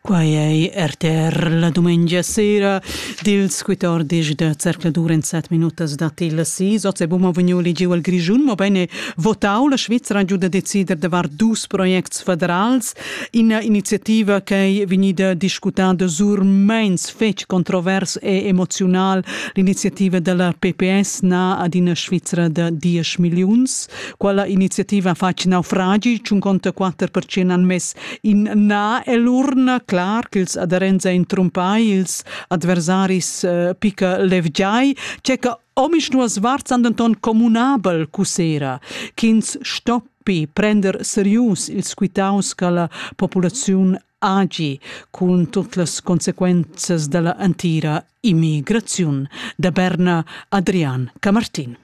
Quai ei RTR la dumengia sera dils 14 da zercladur en 7 minutas dat il sis. Oz è Buma Vagnoli giu al Grischun, ma bene votau la Svizzera giu da decider davar dus projects federals. Ina iniziativa che è vegnida discutada sur meins fetg controvers e emoziunal. L'iniziativa della PPS na ad ina Svizzera da 10 milliuns. Quella iniziativa fa in naufragi, tschun conta quatter percent han mess in naell'urna, clar ch'ils aderents ein trumpai, ils adversaris eh, pica levgiai, cecca omisch nuas varts han denton communabel cussera, ch'ins stoppi prender serius ils quitaus che la populaziun agi cun tutte le conseguenze della antira immigrazione da Berna Adrian Camartin.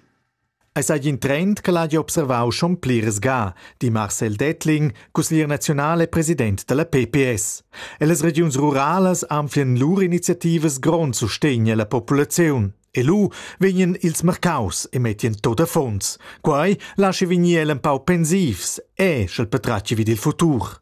Ei seigi in trend ch'el hagi observau schon pliras ga, di Marcel Dettling, cusseglier naziunal e president dalla PPS. Ellas regiuns ruralas anfien lur iniziativas grond sustegn alla populaziun. E lu vegnan ils marcaus e mettien tot affons. Quei laschi vegnir el empau pensivs e, sch'el patratgi vid il futur.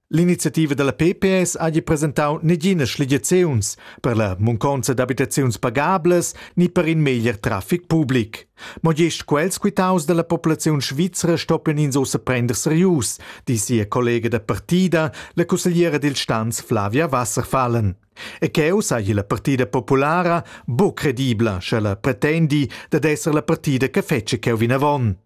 L'iniziativa dalla PPS hagi presentau neginas schligiaziuns per la munconza d'abitaziuns pagablas ni per in meglier traffic public. Mo gest quels quitaus dalla populaziun svizra stoppien ins ussa prender serius, di sia collega da partida, la cussegliera dil Stanz Flavia Wasserfallen. E cheu seigi la partida populara buc credibla, sche la pretendi dad esser la partida che fetschi cheu vinavon.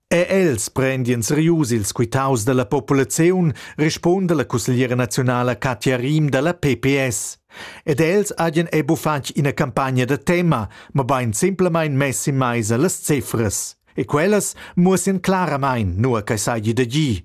Er els prendian serius ils quitaus dalla populaziun, respunda la cussegliera naziunala Katja Riem dalla PPS. Ed els hajan ebu fatg ina campagna da tema, mabain simplamain mess in maisa las cifras. E quellas muossian claramain, nua che seigi da gir.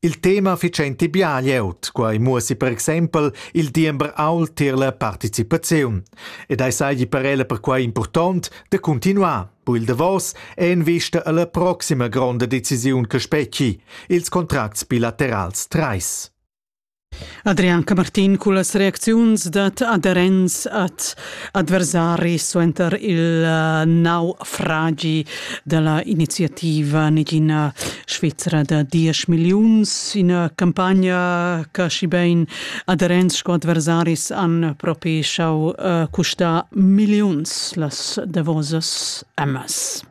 Il tema fitschenti bia glieud, quai muossi per exempel il diember ault tier la participaziun. Ed ei seigi per ella perquai impurtont da continuar, bu il davos è en vista alla proxima gronda decisiun che specchi, ils contracts bilaterals trais. Adrian Camartin cullas reacziuns dat aderents ad adversaris suenter il eh, nau fragi della iniziativa negina Svizzera da 10 milliuns, ina campagna che si ben aderents sco adversaris han propi schau uh, eh, custar milliuns las davosas emmas.